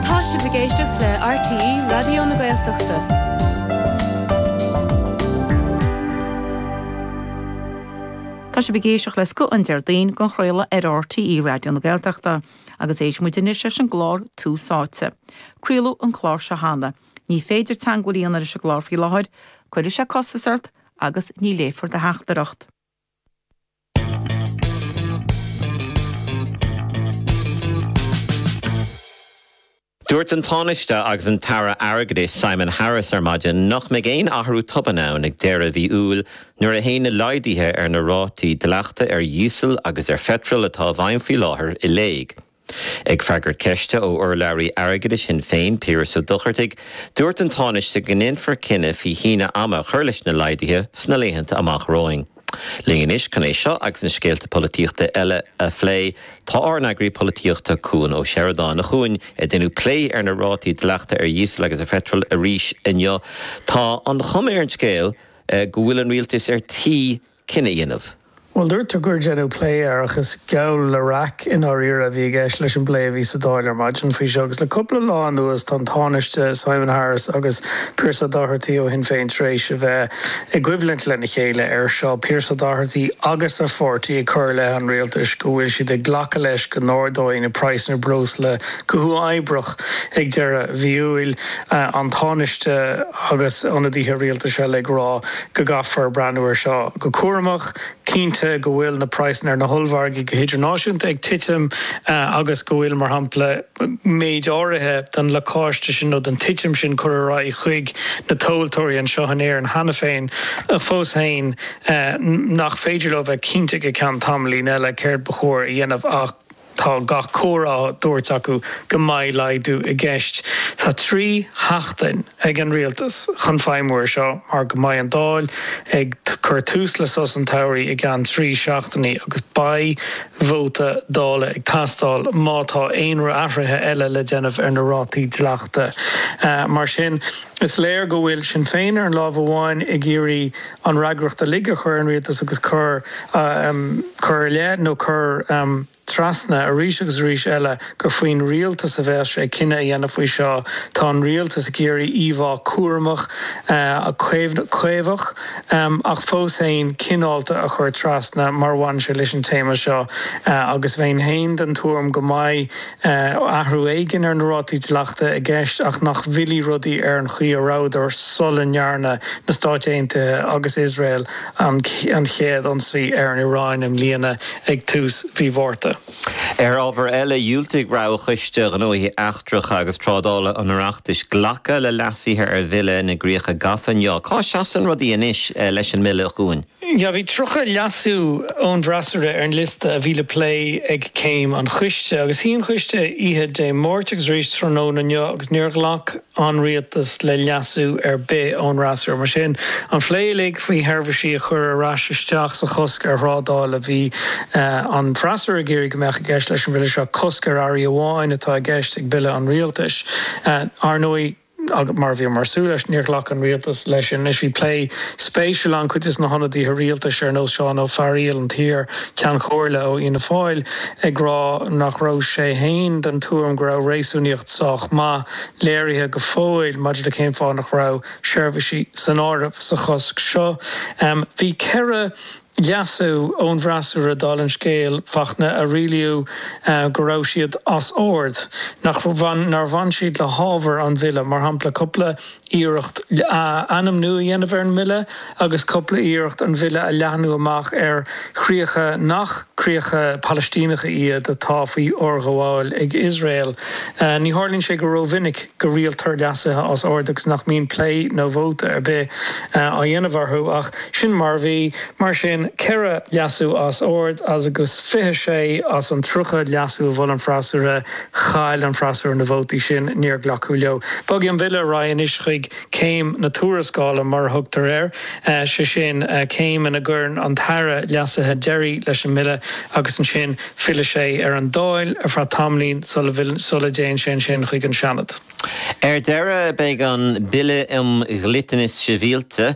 Tá sibh ag éisteacht le RTÉ Raidió na Gaeltachta. Tá sibh ag éisteacht le Scoth an Déardaoin dhá chraoladh ar RTÉ Raidió na Gaeltachta agus éistfidh muid anois leis an gclár Tús Áite. Craoladh an clár seo cheana. Ní féidir teagmháil a dhéanamh leis an gclár faoi láthair, cuirfidh sé costas ort agus ní léifear do theachtaireacht. Dúirt an Tánaiste agus an tAire Airgeadais Simon Harris ar maidin nach mbeidh aon athrú tobann ann ag deireadh mhí Iúil nuair a théann na laghduithe ar na rátaí dleachta ar dhíosal agus ar pheitreal atá i bhfeidhm faoi láthair i léig. Ag freagairt ceiste ó urlabhraí airgeadais Shinn Féin, Piaras Ó Dochartaigh, dúirt an Tánaiste go ndéanfar cinneadh faoi shíneadh ama a chur leis na laghduithe sna laethanta amach romhainn. Linn anois chun é seo agus na scéalta polaitíochta eile a phlé, tá ár n-eagraí polaitíochta, Cuan Ó Seireadáin. A Chuain, rinneadh plé ar na rátaí dleachta ar dhíosal agus ar pheitreal arís inniu. Tá an chuma ar an scéal go bhfuil an Rialtas ar tí cinneadh a dhéanamh. Bhuel, dúirt tú gur deineadh plé air ach is geall le raic i ndáiríre a bhí i gceist leis an bplé a bhí sa Dáil ar maidin faoi seo agus le cúpla lá anuas tá an Tánaiste, Simon Harris agus Pearse Doherty ó Shinn Féin tar éis a bheith i gcoimhlint lena chéile ar seo, Pearse Doherty agus a pháirtí ag cur i leith an Rialtais go bhfuil siad ag glacadh leis go n-ardóidh na praghsanna breosla go huathoibreach ag deireadh mhí Iúil, an Tánaiste agus ionadaithe rialtais eile ag rá. go gcaithfear breathnú ar seo go cúramach, cinnte go bhfuil na praghsanna ar na hollmhargaí go hidirnáisiúnta ag titim agus go bhfuil, mar shampla, méid áirithe den lacáiste sin nó den titim sin curtha ar aghaidh chuig na tomhaltóirí anseo in Éirinn cheana féin ach fós féin nach féidir leo bheith cinnte go ceann tamaillín eile céard ba chóir a dhéanamh ach Tá gach comhartha á thabhairt acu go mbeidh laghdú i gceist. Tá trí sheachtain ag an Rialtas chun feidhmiú ar seo mar go mbeidh an Dáil ag cur tús le sos an tsamhraidh i gceann trí seachtainí agus beidh vóta Dála ag teastáil má tá aon athruithe eile le déanamh ar na rátaí dleachta. Mar sin. Is léir go bhfuil Sinn Féin ar an láimh amháin ag iarraidh an fhreagracht uilig a chur ar an Rialtas agus cur cur i leith nó cur trasna arís agus arís eile gur faoin Rialtas a bheas sé cinneadh a dhéanamh faoi seo. Tá an Rialtas ag iarraidh íomhá cúramach, caomhach ach fós fhéin cineálta a chur trasna mar a bhaineann sé leis an téama seo agus bheinn fhéin den tuairim go mbeidh athrú éigin ar na rátaí dleachta i gceist ach nach bhfillfidh rudaí ar an chaoi a rabhadar sula ndearna na Stáit Aontaithe agus Iosrael an chéad ionsaí ar an Iaráin i mbliana ag tús mhí Mhárta. Ar ábhar eile, dhiúltaigh Roghchoiste Gnóthaí Eachtracha agus Trádála an Oireachtais glacadh le leasuithe ar Bhille na gCríocha Gafa inniu. Cá seasann rudaí anois leis an mBille, a Chuain? Bhí 30 leasú ón bhfreasúra ar an liosta a bhí le plé ag Céim an Choiste, agus shuigh an Coiste oíche Dé Máirt agus arís tráthnóna inniu agus níor ghlac an Rialtas le leasú ar bith ón fhreasúra. Mar sin, an plé uilig faoi sheirbhísí a chur ar ais isteach sa chosc ar thrádáil a bhí an freasúra ag iarraidh go mbeadh i gceist leis an Bhille seo, cosc ar earraí amháin atá i gceist ag Bille an Rialtais, ar ndóigh. Ach mar a bhíomar ag súil leis, níor ghlac an Rialtas leis sin. Anois bhí plé spéisiúil ann, cuid de na hionadaithe Rialtais ar nós Seán Ó Fearaíl, an t-iar Ceann Chomhairle ó Fhianna Fáil, ag rá nach raibh sé fhéin den tuairim go raibh réasúnaíocht sách maith léirithe go fóill maidir le cén fáth nach raibh seirbhísí san áireamh sa chosc seo. Bhí ceithre. leasú ón bhfreasúra, dála an scéil, Fachtna, a rialaíodh go raibh siad as ord, nach, nár bhain siad le hábhar an Bhille, mar shampla, cupla iarracht ainmniú a dhéanamh ar an mBille agus cupla iarracht an Bille a leathnú amach ar chríocha nach críocha Palaistíneacha iad atá faoi fhorghabháil ag Iosrael. Ní tharlaíonn sé go rómhinic. go rialtar leasuithe as ord agus nach mbíonn plé nó vóta ar bith á dhéanamh orthu ach sin mar a bhí. Mar sin, ceithre leasú as ord agus 26 as an 30 leasú a mhol an freasúra, chaill an freasúra na vótaí sin, níor glacadh leo. Bogfaidh an Bille ar aghaidh anois chuig céim na tuarascála mar a thugtar air, sé sin, céim ina gcuireann an tAire leasuithe deiridh leis an mBille agus ansin, Fillfidh sé ar an Dáil ar feadh tamallín sula dtéann sé ansin chuig an Seanad. Ar deireadh, beidh an Bille um Dhliteanas Sibhialta,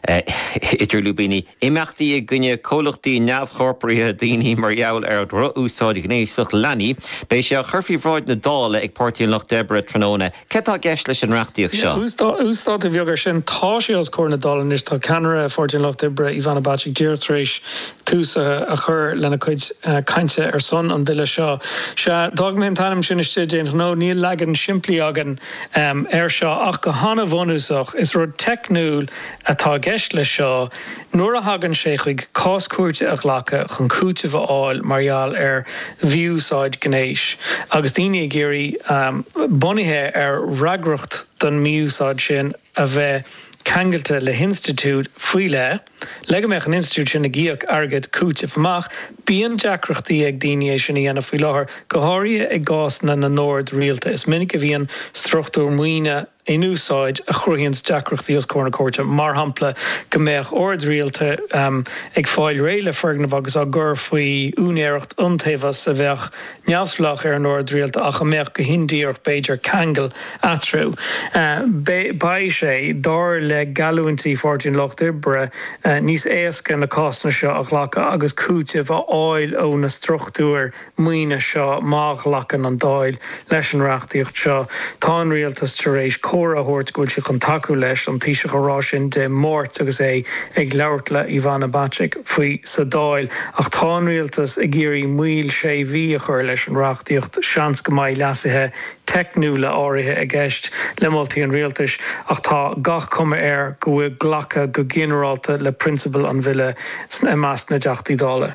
idir lúibíní, Imeachtaí i gcoinne Comhlachtaí Neamhchorpraithe Daoine mar gheall ar Dhrochúsáid Ghnéasach Leanaí, beidh sé á chur faoi bhráid na Dála ag Páirtí an Lucht Oibre tráthnóna. Céard atá i gceist leis an reachtaíocht seo? Uasdátú beag ar sin. Tá sé os comhair na Dála anois. Tá ceannaire Pháirtí an Lucht Oibre, Ivana Bacik, díreach tar éis tús a chur lena cuid cainte ar son an Bhille seo. Sea, d'fhág mé an t-ainm sin istigh d'aon ghnó. Níl leagan simplí againn air seo ach go han-bhunúsach. Is rud teicniúil atá i gceist leis seo. Nuair a thagann sé chuig cás cúirte a ghlacadh chun cúiteamh a fháil mar gheall ar mhí-úsáid ghnéis, agus daoine ag iarraidh, bunaithe ar fhreagracht don mhí-úsáid sin a bheith ceangailte le hinstitiúid faoi leith, le go mbeadh an institiúid sin ag íoc airgead cúitimh amach, bíonn deacrachtaí ag daoine é sin a dhéanamh faoi láthair, go háirithe i gcásanna na n-ord rialta. Is minic a bhíonn struchtúr maoine, in úsáid a chruthaíonns deacrachtaí os comhair na cúirte, mar shampla, go mbeadh oird rialta ag fáil réidh le foirgneamh agus á gcur faoi úinéireacht iontaobhas a bheadh neamhspleách ar an ord rialta ach a mbeadh, go hindíreach b'fhéidir, ceangal eatarthu. Beidh sé, dar le geallúintí Pháirtí an Lucht Oibre, níos éasca na cásanna seo a ghlacadh agus cúiteamh a fháil ó na struchtúir maoine seo. Má ghlacann an Dáil leis an reachtaíocht seo, tá an Rialtas tar éis comhairle a thabhairt go bhfuil siad chun tacú leis an Taoiseach a rá sin Dé Máirt agus é ag labhairt le Ivana Bacik faoi sa Dáil. Ach tá an Rialtas ag iarraidh moill sé mhí a chur leis an reachtaíocht. Seans go mbeidh leasuithe teicniúla áirithe i gceist le moltaí an Rialtais ach tá gach cuma air go bhfuil glacadh go ginearálta le prionsabail an Bhille i measc na dTeachtaí Dála.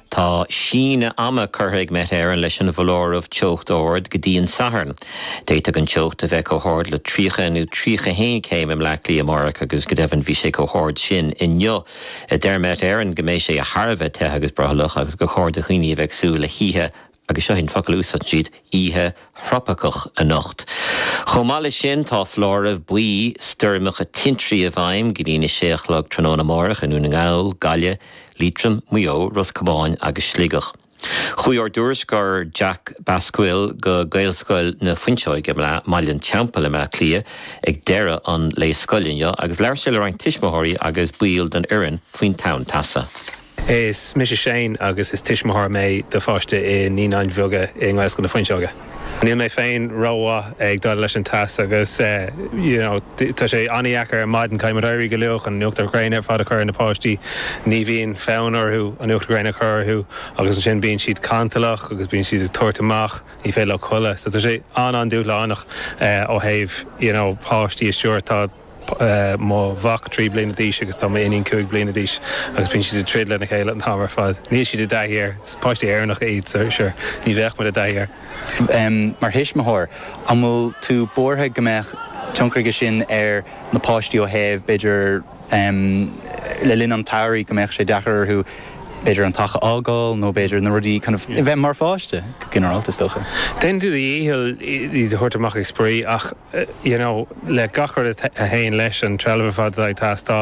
Tá síneadh ama curtha ag Met Éireann leis an bhfoláireamh teocht ard go dtí an Satharn. D'fhéadfadh an teocht a bheith chomh hard le 30 nó 31 céim i mBleá Cliath amárach agus go deimhin bhí sé chomh hard sin inniu. Deir Met Éireann go mbeidh sé thar a bheith te agus brothallach agus gur chóir do dhaoine a bheith ag súil le hoíche Agus seo é an focal a úsáideann siad, oíche thropaiceach anocht. Chomh maith leis sin, tá foláireamh buí stoirmeacha tintrí i bhfeidhm go dtí'n 6 a chlog tráthnóna amárach i nDún na nGall, Gaillimh, Liatroim, Maigh Eo, Ros Comáin agus Sligeach. Chuaigh ár dtuairisceoir Jack Basquill go Gaelscoil na Fuinseoige i mBaile an Teampaill i mBleá Cliath ag deireadh an lae scoile inniu agus labhair sé le roinnt tuismitheoirí agus baill den fhoireann faoin tonn teasa. Is mise Shane agus is tuismitheoir mé do pháiste i Naíonáin Bheaga i nGaelscoil na Fuinseoige. Níl mé féin ró-mhaith ag déileáil leis an teas agus you know tá sé an-dheacair ar maidin caithfidh muid éirí go luath chun an uachtar ghréine ar fad a chur ar na páistí. Ní bhíonn fonn orthu an uachtar ghréine a chur orthu agus ansin bíonn siad cantalach agus bíonn siad ag tabhairt amach, ní féidir leo codladh. So tá sé an-an-dúshlánach ó thaobh you know páistí a stiúradh. Tá. mo mhac trí bliana d'aois agus tá m'iníon cúig bliana d'aois agus bíonn siad ag troid lena chéile an t-am ar fad. Níl siad i dtaithí air. Is páistí Éireannacha iad so sure ní bheadh muid i dtaithí air. Mar thuismitheoir, an bhfuil tú buartha go mbeadh tionchar aige sin ar na páistí ó thaobh b'fhéidir le linn an tsamhraidh go mbeadh sé deacair orthu b'fhéidir an teach a fhágáil nó b'fhéidir na rudaí kind of a bheith mar pháiste go ginearálta is dócha. Déanann tú do dhícheall iad a thabhairt amach ag spraoi ach you know le gach rud a théann leis an trealamh ar fad atá ag teastáil,